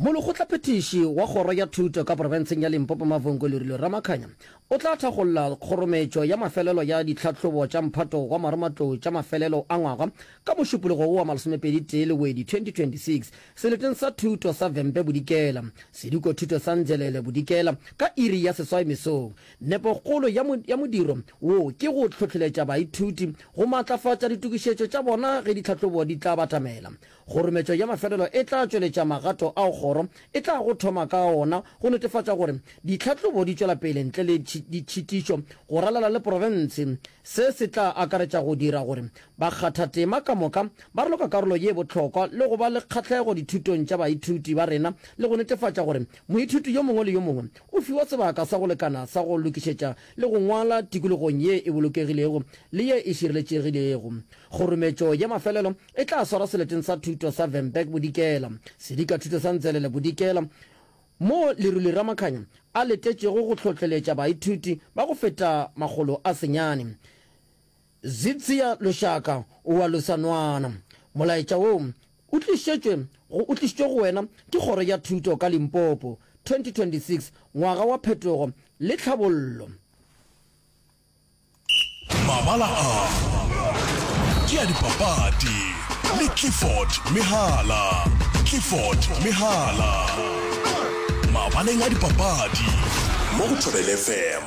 Molekgotlaphethiši wa Kgoro ya Thuto ka Profenseng ya Limpopo Mavhungo Lerilwe Ramakhanya o tla thakgolla kgorometšo ya mafelelo ya ditlhahlobo tša mphato wa maromatlou tša mafelelo a ngwaga ka Mošupologo wo wa masomepedi tee Lewedi 2026 seleteng sa thuto sa Vhembe Bodikela sediko thuto sa Ndzelele Bodikela ka iri ya seswai mesong. Nepokgolo ya modiro wo ke go hlohleletša baithuti go matlafatša ditokišetšo tša bona ge ditlhahlobo di tla batamela. Kgorometšo ya mafelelo e tla tšweletša magato ao kgoro e tlago thoma ka ona go netefatša gore ditlhahlobo di tšwela pele ntle le ditšhitišo go ralala le profense. Se se tla akaretša go dira gore bakgathatema ka moka ba raloka karolo ye bohlokwa le go ba le kgahlego dithutong tša baithuti ba rena le go netefatša gore moithuti yo mongwe le yo mongwe o fiwa sebaka sa go lekana sa go lokišetša le go ngwala tikologong ye e bolokegilego le ye e šireletšegilego. Kgorometšo ya mafelelo E tla swarwa seleteng sa thuto sa Vemberg Bodikela, sedika thuto sa Ntselele Bodikela, moo Leruli Ramakhanya a letetšego go hlohleletša baithuti ba go feta makgolo a senyane. Zitziya Lushaka wa Lusanwana, Molaetša wo o tlišetšwe go o tlišitšwe go wena ke Kgoro ya Thuto ka Limpopo, 2026 Ngwaga wa Phetogo le Tlhabollo. Mabala a ke a dipapadi le Clifford Mehala. Clifford Mehala mabaleng a dipapadi mo go Thobel FM.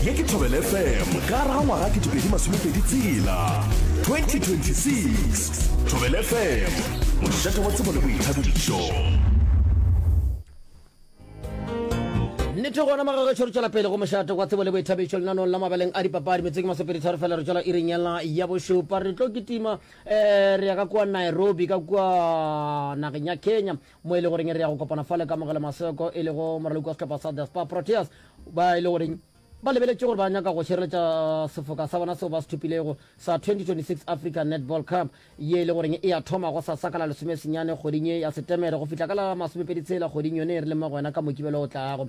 Ye ke Thobel FM ka gare ga ngwaga ke dipedi masomepedi tsela 2026. Thobel FM, mošate wa tsebo le boithabišo. nnete gona magagešo re tšwela pele go mošate kwa tsebo le boithabišo lenanong la mabeleng a dipapadi metseng masopeditharo fela re tšwela iring yela ya bošupa re tlo kitima um eh, re ya ka kua nairobi ka kua nageng ya kenya mo e le goreng re ya go kopana fale ka mogele maseko e lego moraloki wa setlhopha sa the spa proteas ba e le goreng ba lebeletše gore ba nyaka go šireletša sefoka sa bona seo ba se thopilego sa 2026 africa netball cup ye e le goreng e a thoma go sasa ka la lesomesenyane kgoding ye ya Setemere go fihla ka la masomepedi tshela kgoding yone e re leng mo go yona ka Mokibelo o tlago.